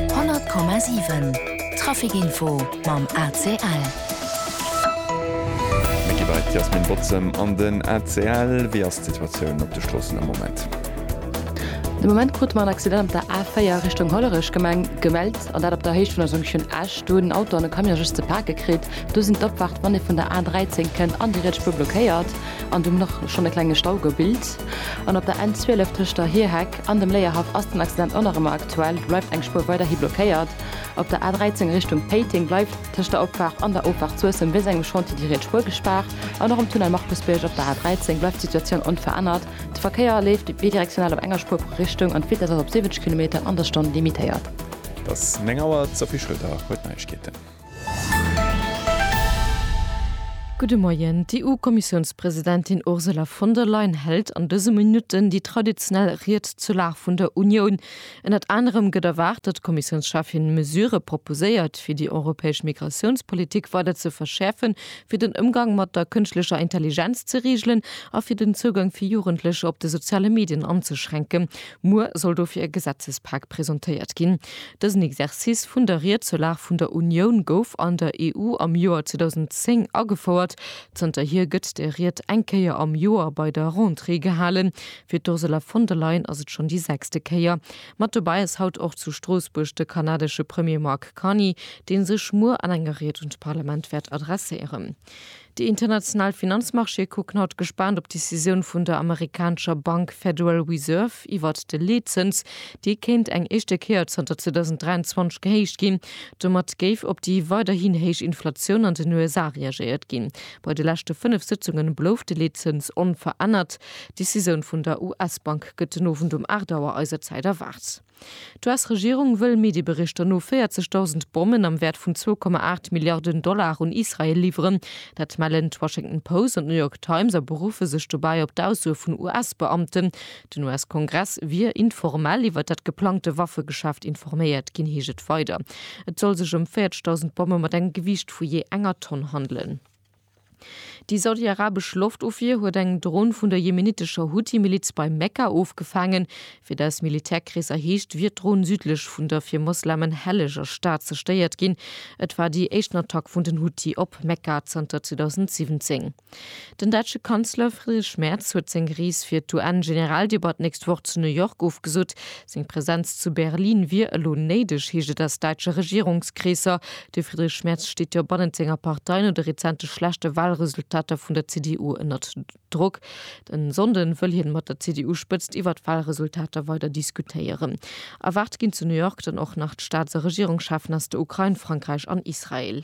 100,7 Trafic Info mam ACL. Mir gi bei d'Yasmine Bozem an den ACL. Wéi ass d'Situatioun op de Stroossen am Moment? De Moment krute mer en Accident op der A4 Richtung Hollerech Gemeng gemellt, an dat op der Héicht vun der Jonction Esch. Do hunn en Auto an e Camion just ze pake kritt. Do sinn d'Opfaart, wann ee vun der A13 kënnt, an déi riets Spuer blockéiert an do huet och schonn e klenge Stau gebilt. An op der N12 tëscht der Hierheck An dem Léierhaff ass den Accident och nach ëmmer aktuell. Do bleift eng Spuer weiderhi blockéiert. Op der A13 Richtung Péiteng bleift tëscht der Opfaart an der Offaart Suessem wéinst engem Chantier déi riets Spuer gespaart. An och um Tunnel Markusbierg op der A13 bleift d'Situatioun onverännert. De Verkéier leeft bidirektional op enger Spuer pro Richtung an d'Vitess ass op 70 Kilometer an der Stonn limitéiert. Et ass 9 Auer, d'Sophie Schröder huet d'Neiegkeeten. Gudde Moien. D'EU-Kommissiounspresidentin Ursula von der Leyen hält an dëse Minutten déi traditionell Ried zur Lag vun der Unioun. Ënnert anerem gëtt erwaart, datt d'Kommissiounscheffin Mesurë proposéiert, fir déi europäesch Migratiounspolitik weider ze verschäerfen, fir den Ëmgang mat der kënschtlecher Intelligenz ze reegelen a fir den Zougang fir Jugendlecher op de soziale Medien anzeschränken. Muer soll dofir e Gesetzespak presentéiert ginn. Dësen Exercice vun der Ried zur Lag vun der Unioun gouf an der EU am Joer 2010 agefouert. Zënterhier gëtt de Ried eng Kéier am Joer bei der Rentrée gehalen. Fir d'Ursula von der Leyen ass et schonn déi sechste Kéier. Mat dobäi ass haut och zu Stroossbuerg de kanadesche Premier Mark Carney, dee sech muer an enger Ried un d'Parlament wäert adresséieren. Déi international Finanzmarchéë kucken haut gespaant op d'Decisioun vun der amerikanescher Bank Federal Reserve iwwert de Leetzëns. Dee kéint eng éischte Kéier zanter 2023 gehéicht ginn. Domat géif op déi weiderhin héich Inflatioun an den USA reagéiert ginn. Bei de leschte fënnef Sëtzunge blouf de Leetzëns onverännert. D'Decisioun vun der US-Bank gëtt den Owend um 8 Auer eiser Zäit erwaart. D'US-Regierung wëll Medieberichter no 40.000 Bommen am Wäert vun 2,8 Milliarden Dollar un Israel liwweren. Dat mellen d'Washington Post an d'New York Times a beruffe sech dobäi op d'Aussoe vun US-Beamten. Den US-Kongress wier informell iwwer dat geplangte Waffegeschäft informéiert ginn, heescht et weider. Et soll sech ëm 40.000 Bomme mat engem Gewiicht vu jee enger Tonn handelen. Déi saudi-arabesch Loftofwier huet eng Dron vun der jemenitescher Huthi-Miliz bei Mekka ofgefaangen. Wéi dat aus Militärkreesser heescht, wier d'Dron südlech vun der fir Moslemen helleger Stad zerstéiert ginn. Et war déi éischten Attack vun den Huthi op Mekka zanter 2017. Den däitsche Kanzler Friedrich Merz huet seng Rees fir d'UN-Generaldebatt d'nächst Woch zu New York ofgesot. Seng Presenz zu Berlin wier elo néideg, heescht et aus däitsche Regierungskreesser. De Friedrich Merz steet jo bannent senger Partei no de rezente schlechte Walresultater vun der CDU ënnert Drock. E Sonnde wëll hien mat der CDU-Spëtzt iwwer d'Walresultater weider diskutéieren. Erwaart ginn zu New York dann och nach d'Staats a Regierungscheffen aus der Ukrain, Frankräich an Israel.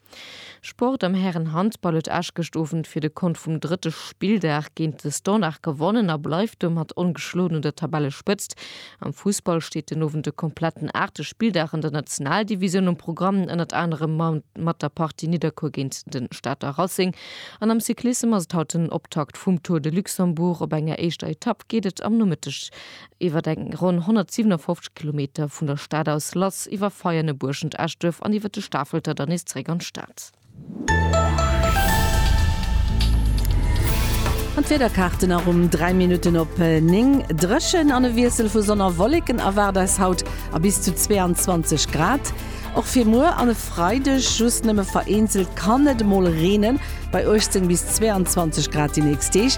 Sport, Am Hären-Handball huet Esch gëscht Owend fir de Kont vum drëtte Spilldag géint de Standard gewonnen a bleift domat ongeschloen un der Tabellespëtzt. Am Fussball steet den Owend de kompletten aachte Spilldag an der Nationaldivisioun um Programm, ënnert anerem mat der Partie Nidderkuer géint de Stater Racing. An am Cyclissem ass et haut den Optakt vum Tour de Luxembourg. Op enger éischter Etapp geet et am Nomëtteg Iwwer eng ronn 157 Kilometer vun der Stad aus lass iwwer Veianen, Buerschent, Eschduerf an iwwer de Stafelter dann nees zeréck an d'Stad. An d'Wiederkaarten erëm 3 Minutten op 9. Dréchen an e Wiessel vu Sonn a Wolleken erwaart eis haut a bis zu 22 Grad och fir muer an e Freideg. Just nëmme vereenzelt kann et emol reenen, bei 18 bis 22 Grad déi nächst Deeg.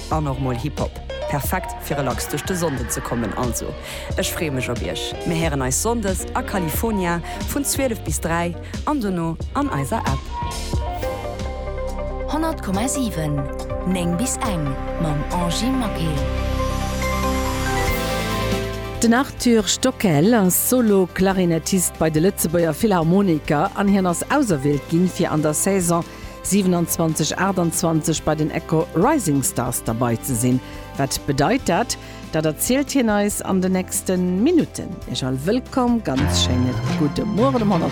An och mol Hip Hop. Perfekt fir relax duerch de Sonnden ze kommen. Also ech freeë mech op iech. Mir héieren eis Sonndes a California vun 12 bis 3 an dono an eiser App. 100,7 9 bis eng mam Angy Maquet. Den Arthur Stockel ass Solo-Klarinettist bei de Lëtzebuerger Philharmoniker an hien ass auserwielt ginn, fir an der Saison 27 28 bei den Echo Rising Stars derbei ze sin. Wat bedeit dat? Dat erzielt hien eis an de nächsten Minuten. Iech all wëllkomm, ganz schéine gudde Mueren um 100.